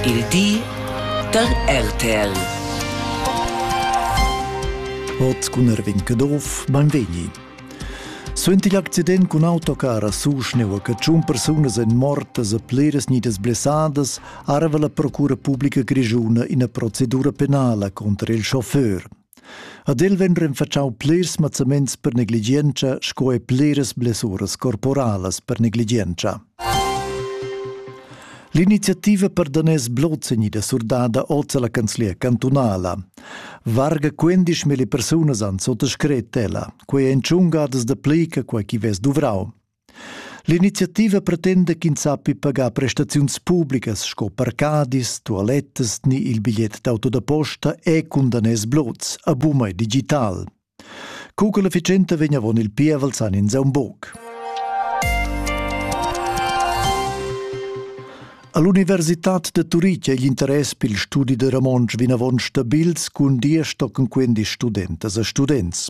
Il di da RTL. Ot cun Erwin Kedorf beim Veni. Suenter l'accident cun autocar a Suschneu che tschun persunas èn mortas e pliras nidas blessadas, arva la Procura Publica Grischuna ina procedura penala contro il chauffeur. Ad el vegn renfatschau plirs mazzaments per negligientscha sco e pliras blessuras corporalas per negligientscha. L'iniziativa per daners Blozzegni da surdada oz alla canzlia cantunala. Varga 15.000 persunas han sottascret ella, quei ein tschungadas da plica quei chi vess duvrau. L'iniziativa pretenda ch'ins sappi pagar prestaziuns publicas sco parcadis, tualettas ni il bigliet d'auto da posta e cun daners blots a bumai digital. Co che l'efficienza vegn avon il pievel san ins aun buc. All'Universitad de Turitg è l'interess per il studi de Ramonsch vinavon stabils cun dir stocken quindi studentas e students.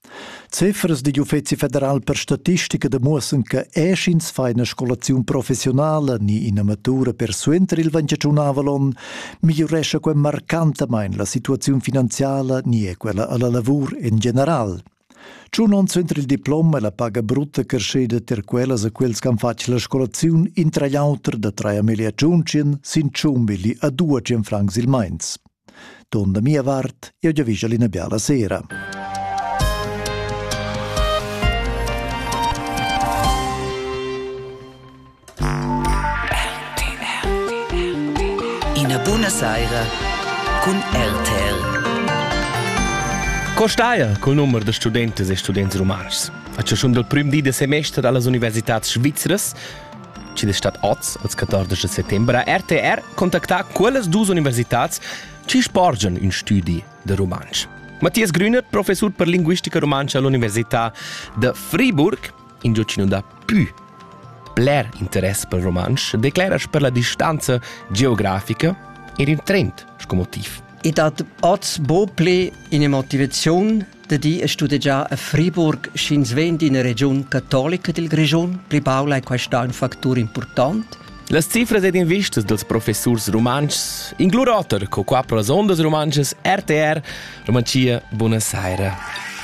Cifras digl Uffeci federal per statistica demuossan che eschins fa ina scolaziun professionala ni ina matura per suenter il ventgianunavel onn migliurescha quei marcantamain la situaziun finanziala ni è quella alla lavur en general. Tschun onns suenter il diplom è la paga brutta creschida ter quellas a quels che han fatg la scolaziun intra l'auter da 3 miglia tschun sin 100 milli a 200 francs il meins. Turn da mia vart, jeu giavischel ina biala sera. Ina buna saira cun RTL. Co staia col numero da studentes e students rumantschs? A ciuschun dal prim di da semester dallas universitads svizras chi'd es stat oz als 14 da settember a RTR contactà quellas duos universitats chi sporgian ün stüdi da rumantsch. Mathias Grüner, professur per linguistica rumantscha all'Università da Friburg, ingio chi nun dà pü bler interess per rumantsch, declera per la distanza geografica er in trend sco motiv. I dat oz bo ple in motivaziun Da di è studegià a Friburg, sch'ins vegn d'ina regiun catolica dil Grischun, pli baul ei questa un factur important. Las cifras ed invistas dels professors rumantschs inclur oter co quattro sondas rumantschas RTR Romanzia Buona Saira.